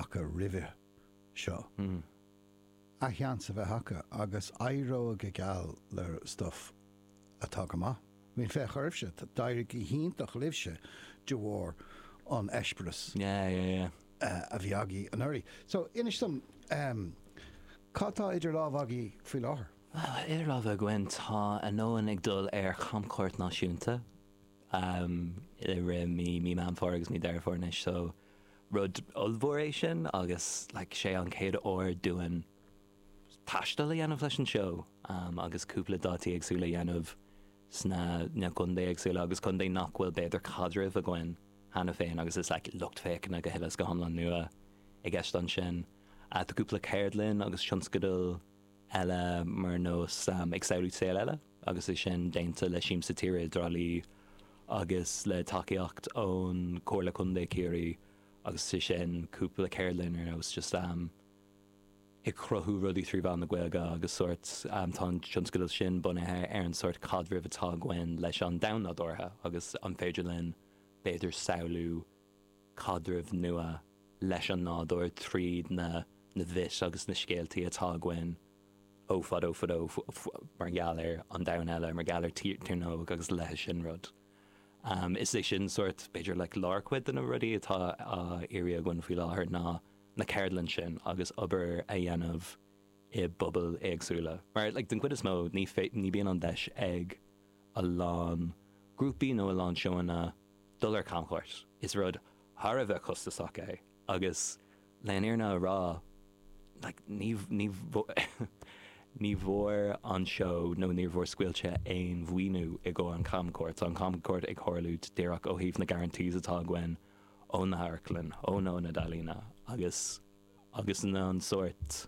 acu roimhe seo, an seans a bheith acu agus éireoidh go geal le stuif atá go maith. Bhuel, féach oraibhse, d'éirigh go hiontach libhse de bharr an eispéireas a bhí agaibh anuraidh. So, inis dom, cad tá idir lámha agaibh faoi láthair? Bhuel, idir lámha againn, tá Anonn ag dul ar chamchuairt náisiúnta i rith mí Mheán Fómhair agus mí Dheireadh Fómhair anois, so, Rud ollmhór é sin agus like sé an chéad uair dúinn taisteal a dhéanamh leis an seó agus cúpla dátaí éagsúla a dhéanamh sna na contae éagsúla agus contae nach bhfuil b'fhéidir caidreamh againn cheana féin agus is like lucht féachana go huile is go hiomlán nua i gceist ansin. Tá cúpla ceardlann agus tionscadal eile mar nós ag samhlú saol eile. agus é sin déanta le Siamsa Tíre i dTrá Lí agus le tacaíocht ón Comhairle Contae Ciarraí agus sé sin cúpla ceardlann ar nós just am ag cruthú rudaí trí mheán na Gaeilge agus sórt am tá an tionscadal sin bunaithe ar an sórt caidrimh atá againn leis an domhan nádúrtha agus an féidir linn b'fhéidir samhlú caidreamh nua leis an nádúr tríd na na myths agus na scéaltaí atá againn ó fadó fadó mar gheall ar an domhan eile, mar gheall ar Tír na nÓg agus a leithéid sin rud. Is é sin sórt, b'fhéidir, like lárchuid de na rudaí atá á iarraidh againn faoi láthair ná na ceardlann sin agus obair a dhéanamh i bpobail éagsúla mar like den chuid is mó ní bhíonn an deis ag a lán grúpaí nó a lán seóanna dul ar camchuairt. Is rud thar a bheith costasach é agus le an fhírinne a rá ní bhfuair an seó nó níor bhfuair Scaoilte aon mhaoiniú i gcomhair an chamchuairt. Tá an camchuairt ag tarlú díreach ó thaobh na guarantees atá againn ó na hamharclann, ón ionad ealaíne agus na an sórt.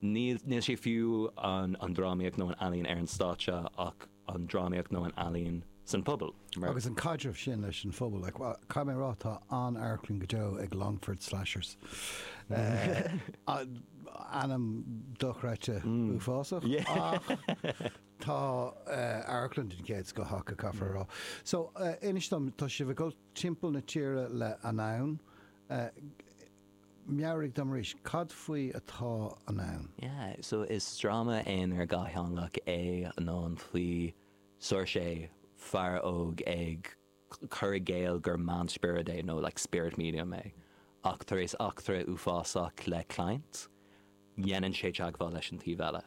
Níl sé fiú an drámaíocht nó an ealaín ar an stáitse ach an drámaíocht nó an ealaín san phobal. Agus an caidreamh sin leis an phobal, caithfidh mé a rá, tá an-amharclann go deo ag Longford Slashers. Ainm dochreidte uafásach ach tá amharclann den chéad scoth acu, caithfear a rá. So, inis dom, tá sibh ag dul timpeall na tíre le Anonn. Meabhraigh dom arís, cad faoi atá Anonn? Yeah, so is dráma aonair dhátheangach é Anonn faoi Seoirse, fear óg ag cur i gcéill gur meánspiorad é nó like spirit medium é. Ach tar éis eachtra uafásach le client, déanann sé teagmháil leis an taobh eile.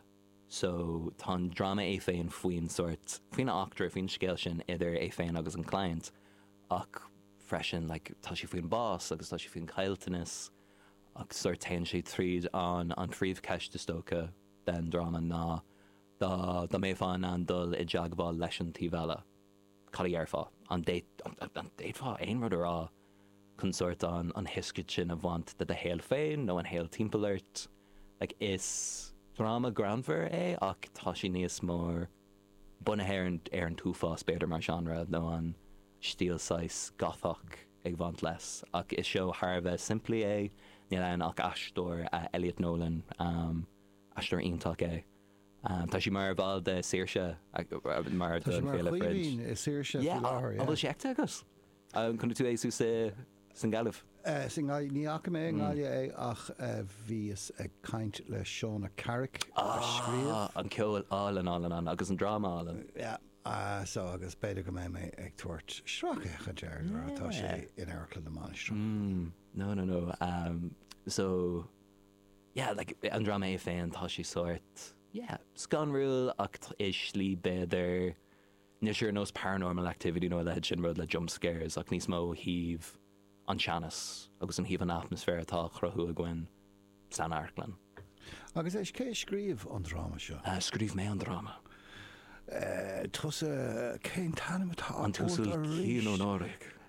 So tá an dráma é féin faoin sórt, faoin eachtra, faoin scéal sin idir é féin agus an client. ach freisin like tá sé faoin bás agus tá sé faoin caillteanas ach sórt téann sé tríd an an phríomhcheist is dócha den dráma ná dá dá mbeadh tú in ann dul i dteagmháil leis an taobh eile cad a dhéarfá? an bhféadfá aon rud a rá chun sórt an tuiscint sin a bhaint de do shaol féin nó an shaol timpeall ort like is dráma greannmhar é ach tá sé níos mór bunaithe ar an t-uafás, b'fhéidir, mar genre, nó an stíl saghas Gothach ag bhaint leis, ach is seó thar a bheith simplí é, níl ann ach aisteoir, Elliot Nolan, aisteoir iontach é, tá sé mar bhall de Saoirse, ar Féile Fringe. Tá sé mar Chaoimhín i Saoirse faoi láthair. An bhfuil sé feicthe agat? An chonaic tú é thuas sa nGaillimh? Sa nGaillimh? Ní fhaca mé i nGaillimh é ach bhíos ag caint le Shauna Carrick a scríobh. An ceol álainn, álainn, álainn agus an dráma álainn. So agus b'fhéidir go mbeidh mé ag tabhairt sracfhéachaint air nuair atá sé in Amharclann na Mainistreach. No, no, no so yeah like an dráma é féin tá sé sórt yeah scanrúil ach i slí b'fhéidir Níl sé ar nós Paranormal Activity nó a leithéid sin, rud le jump scares, ach níos mó ó thaobh an teannas agus ó thaobh an atmaisféar atá á chruthú againn san amharclann. Agus éist, cé a scríobh an dráma seo? Scríobh mé an dráma. Tusa, cén t-ainm atá ort arís? An tUasal Cian Ó Náraigh.